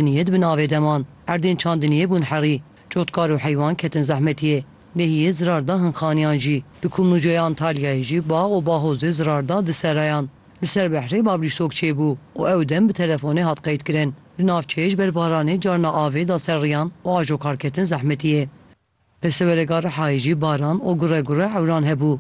Niyet bi navê de man. Erdên çandiniyê bûn herî. Cotkar û heywan ketin zehmetiyê. Lehiyê zirar da hin xaniyan jî. Di Kumluceyê Antalyayê jî bax û baxozê zirar da di serayan. Li ser behrê Bablîsok çêbû û ew dem bi telefonê hat qeydkirin. Li navçeyê ji ber baranê carna avê da ser riyan û ajokar ketin zehmetiyê. Li Sewerega Rihayê jî baran û gure gure ewran hebû.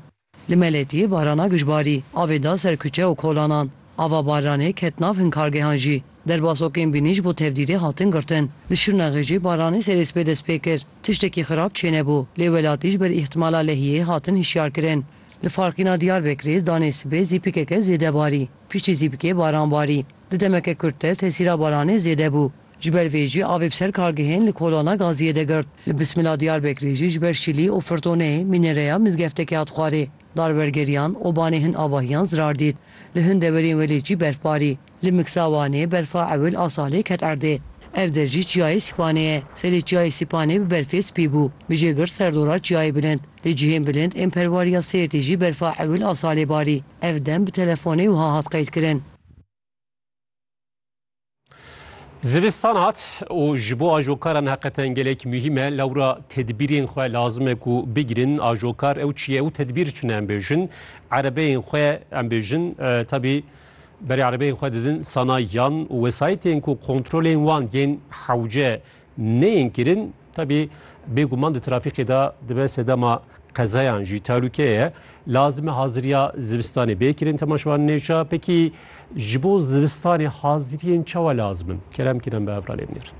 Li Meletiyê barana gijbarî avê da ser kuçe û kolanan. Ava baranê ket nav hin kargehan jî. Derbasokên bînî ji bo tevdîrê hatin girtin. Li Şirnexê jî baranê serê sibê dest pê kir. Tiştekî xirab çênebû, lê welatî ji ber îhtîmala lehiyê hatin hişyarkirin. Li Farqîna Diyarbekirê danê sibê zîpikeke zêde barî. Piştî zîpikê baran barî. Di demeke kurttir tesîra baranê zêde bû. Ji ber vê jî avê bi ser kargehên li Kolana Gaziyê de girt. Li Bismila Diyarbekirê jî ji ber şîlî û firtonê mînereya mizgeftekê hat xwarê. Darwergeriyan û banê hin avahiyan zirar dît. Li hin dewerên welêt jî berf barî. Li Miksa Wanê berfa ewil a salê ket erdê. Ev der jî Çiyayê Sîpanê ye. Serê Çiyayê Sîpanê bi berfê spî bû. Bijê girt ser dora Çiyayê Bilind. Li cihên bilind ên perwariya Sêrtê jî berfa ewil a salê barî. Ev dem bi telefonê wiha hat qeydkirin. Zivistan hat û ji bo ajokaran heqeten gelek muhîm e lewra tedbîrên xwe lazim e ku bigirin ajokar ew çi ye û tedbîr tune em bêjin erebeyên xwe em bêjin tabî berê erebeyên xwe didin sanayiyan û wesayetên ku kontrolên wan yên hewce neyên kirin tevî bêguman di trafîkê de dibe sedema qezayan jî talûke ye. Lazime haziriya zivistanê bê kirin temaşevan nêşa. Pekî ji bo zivistanê haziriyên çawa lazim in? Kerem kirin bi evra lê binêrin.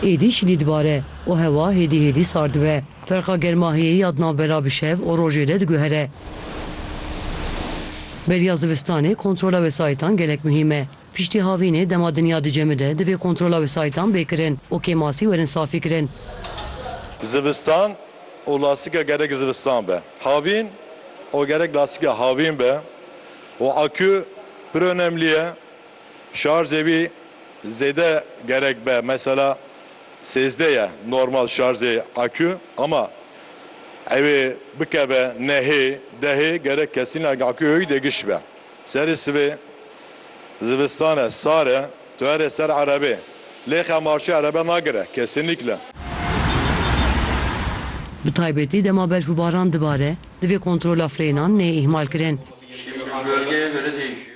Êdî şilî dibare û hewa hêdî hêdî sar dibe. Ferqa germahiyeyî ya di navbera bi şev û rojê de diguhere. Beriya zivistanê kontrola wesayîtan gelek muhîm e. Piştî havînê dema dinya dicemide divê kontrola wesayîtan bê kirin û kêmasî werin safîkirin. Zivistan û lastika gerek zivistan be. Havîn û gerek lastika havîn be û akû pir onemlî ye. Şarjê wî zêde gerek be mesela sêzdeh ye normal şarjê akû ama ew ê bikeve nehê, dehê gerek kesîna akûyê wî dê giş be. Serê sivê zivistan e, sar e, tu here ser erebê lê xemarçe erebe nagire kesinîkle. Bi taybetî dema berf û baran dibare, divê kontrola frênan neyê îhmalkirin.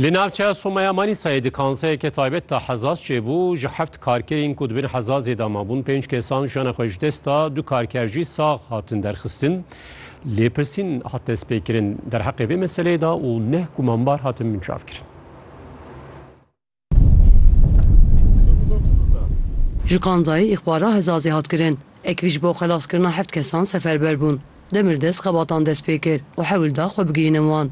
Li navçeya Somaya Manîsayê di kanseyeke taybet de hezaz çêbû ji heft karkerên ku di bin hezazê de mabûn pênc kesan jiyana xwe ji dest da du karker jî sax hatin derxistin. Lêpirsîn hat destpêkirin derheqê vê meseleyê de û neh gumanbar hatin binçavkirin. Ji Kanzayê îxbara Hezazê hat kirin. Ekvî ji bo xelaskirina heft kesan seferber bûn. Demir dest xebatan dest pê kir û hewl da xwe bigihînin wan.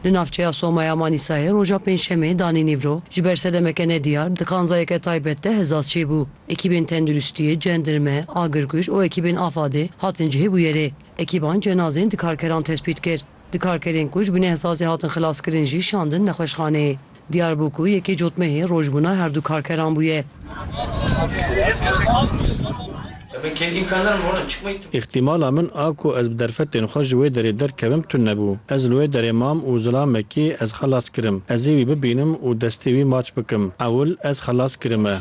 Li navçeya Soma ya Manîsayê roja pêncşemê danî nîvro ji ber sedemeke nediyar di kanzayeke taybet de Hezaz çêbû. Ekîbên tenduristiyê, cendirme, agirkuj û ekîbên Afadê hatin cihê bûyerê. Ekîban cenazên di karkeran tespît kir. Di karkerên ku ji bin ehsasê hatin xilaskirin jî şandin nexweşxaneyê. Diyar bû ku yekê cotmehê rojbûna her du karkeran bûye. Îhtimala min a ku ez bi derfetên xwe ji wê derê derkevim tund nebû. Ez li wê derê mam û zilamekê ez xelas kirim. Ez ê wî bibînim û destê wî maç bikim. Ewil ez xelas kirime.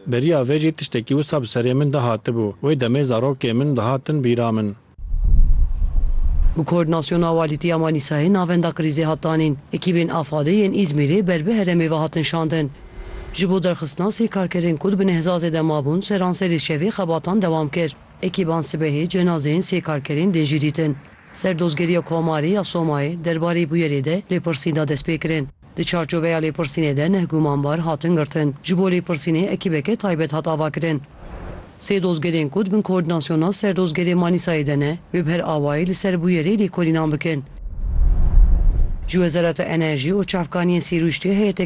Beriya vê jî tiştekî wisa bi serê min de hatibû. Wê demê zarokê min dihatin bîra min. Bi koordînasyona Walîtiya Manîsayê navenda krîzê hat danîn. Ekîbên Afadê yên Îzmîrê ber bi heremê ve hatin şandin. Ji bo derxistina sê karkerên ku di binehzazê de mabûn seranserê şevê xebatan dewam kir. Ekîban sibehê cenazeyên sê karkerên din jî dîtin. Serdozgeriya Komarê ya Somayê derbarê bûyerê de lêpirsîn da destpêkirin. Di çarçoveya lêpirsînê de neh gumanbar hatin girtin. Ji bo lêpirsînê ekîbeke taybet hat avakirin. Sê dozgerên ku di bin Koordînasyona Serdozgerê Manîsayê de ne, wê bi her awayî li ser bûyerê lêkolînan bikin. Ji Wezareta Enerjî û Çavkaniyên Sîrûştê heyeteke